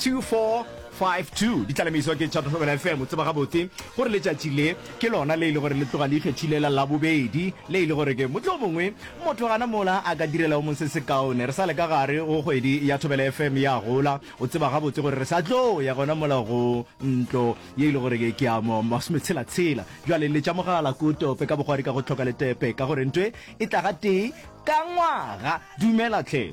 2452 di tlalemišwa ke Tšhatohlogela FM. O tseba gabotse gore letšatši le ke lona le e le gore le tloga le ikgethile la Labobedi, le e le gore ke mohlomongwe motho gana mola a ka direla o mong se sekaone. Re sa le ka gare go kgwedi ya Thobela FM ya gola, o tseba gabotse gore re sa tlo ya gona mola go ntlo ye e le gore ke ya mo masometshela-tshela. Bjale le tša mogala ko tope ka bogwari ka go hloka letepe ka gore ntwe e tla gatee ka ngwaga. Dumela tlhe.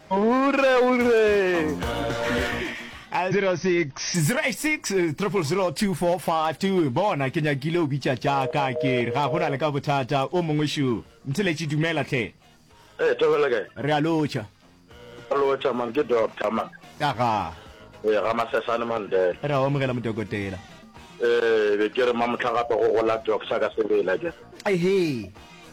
Hure hure. 0606000245 bona ke nyakile o bitša tša ka ke re ga gona le ka bothata o mongwe šo ntheletše dumela tlhe Hey, Thobela kae? re a lotšha Re lotšha man, ke doctor man. ka ga Ee, ga Masesane Mandela. re a omogela modokotela Ee, be ke re mamotlha gape go gola doctor ka sebele akere. ehe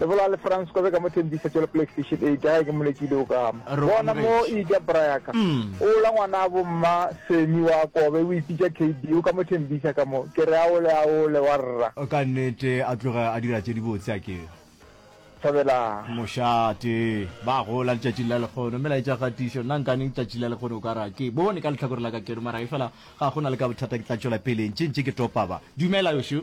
le bola le france kobe ka mo thembisa tšelo playstation eight ga ke molekile o kama bona mo e ja brayaka mm. o la ngwana a bomma semi wa kobe o ipitša kd o ka mo thembisa ka mo ke re aole aole wa rra ka nnete a tloga a dira tše dibotse a ke thabela mošate ba gola letšatšing la lekgono mme laetša kgatišo nna nkaneng letšatšing la lekgono o ka ra ke bone ka letlhakore la ka keno mara e fela ga go na le ka bothata ke tla tšwela peleng tše ntše ke topaba dumela yošo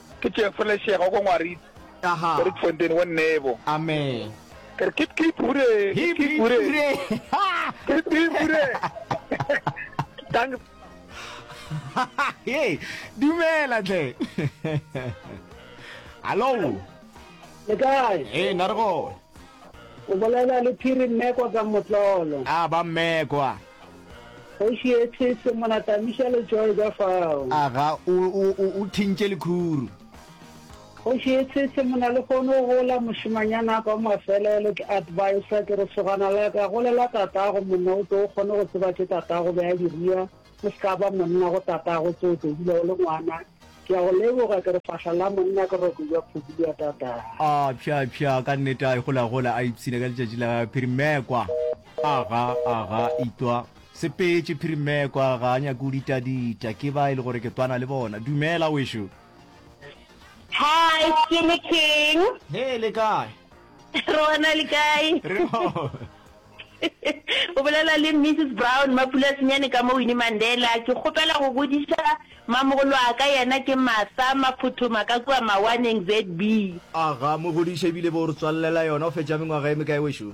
Ke Tšefo Lešega o ko Ngwarite. Aha. Ko Rietfontein wo Nebo. Amen. Ke re kip kip hure. Hip hip hure. Kip kip hure. Tang. Hey, dumela tle. Hello. Le kae? Hey, na re go. O bolela le Phiri Mmekwa ka Motlolo. Ah, ba Mmekwa. Kgoši ye these mona tamiša letšoe ka fao. A ga o, o, o, o thintše lekhuru? Kgoši ye these mona le kgone go gola mošemanyana a ka wa mafelelo. Ke adviser, ke re sogana la ka, golela tatago monna o tlo o kgone go tseba tše tatago be a di rua. O se ka ba monna go tatago tse o tlo dula o le ngwana. Ke a go leboga, ke re fahla la monna ke roko bja phudu bja tatago. A pšha, pšha, ka nnete a e golagola a ipshina ka letšatši la phirimekwa. Aga, aga, itwa. Sepetše, Phirimekwa ga a nyake go ditadita ke ba e le gore ke twana le bona. Dumela, wešo. Hi, Skinny King. He, le kae? Rona le kae? Re gona. O bolela le Mrs. Brown Mapulasenyane ka mo Winnie Mandela. Ke kgopela go bodiša mamogolo a ka yena ke Martha Maphothoma ka kua Mawaneng, ZB. Aga, mogodiša ebile bo o re tswallela yona o fetša mengwaga e mekae wešo?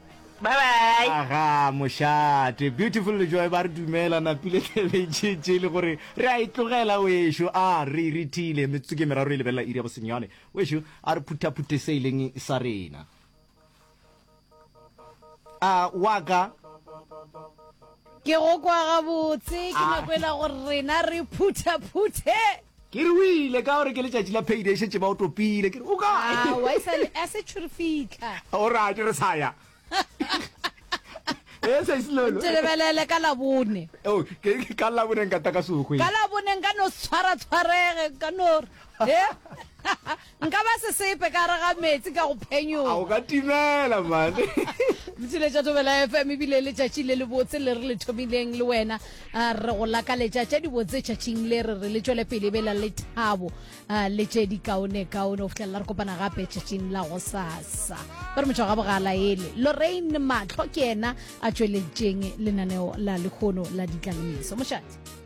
Bye bye. Aga mošate beautiful lejoe ba re dumela napile tebetšetše e le gore re a e tlogela wešo a re irithile metsotso ke meraro e lebelela iri ya bosenyane wešo a re phuthaphuthe se e leng sa rena a waka ke go kwa gabotse ke nako e la gore rena re phuthaphuthe Ke re o ile ka gore ke letšatši la payday šetše ba o topile ke re o kae? A wa e sale a se tšhuri fitla. O ra ke re sa ya. E sa isilolo. Ke lebelele ka la bone. O oh, ke ka la bone nka ta ka sogwe. Ka la bone nka no tshwara tshwarege ka no. Eh? Nka ba sesepe ka gare ga meetse ka go phenyoga. A o ka timela mane. Motshile tša Thobela FM ebile le tšatši le le botse le re le thomileng le wena re go lakaletša tša dibotse tšatšing le re re le tšwele pele e bela le thabo le tše di kaone kaone go fitlhelela re kopana gape tšatšing la go sasa ba re motho ga bogala ele Lorraine Matlho ke yena a tšweleditšeng lenaneo la lekgono la ditlalemeso mošate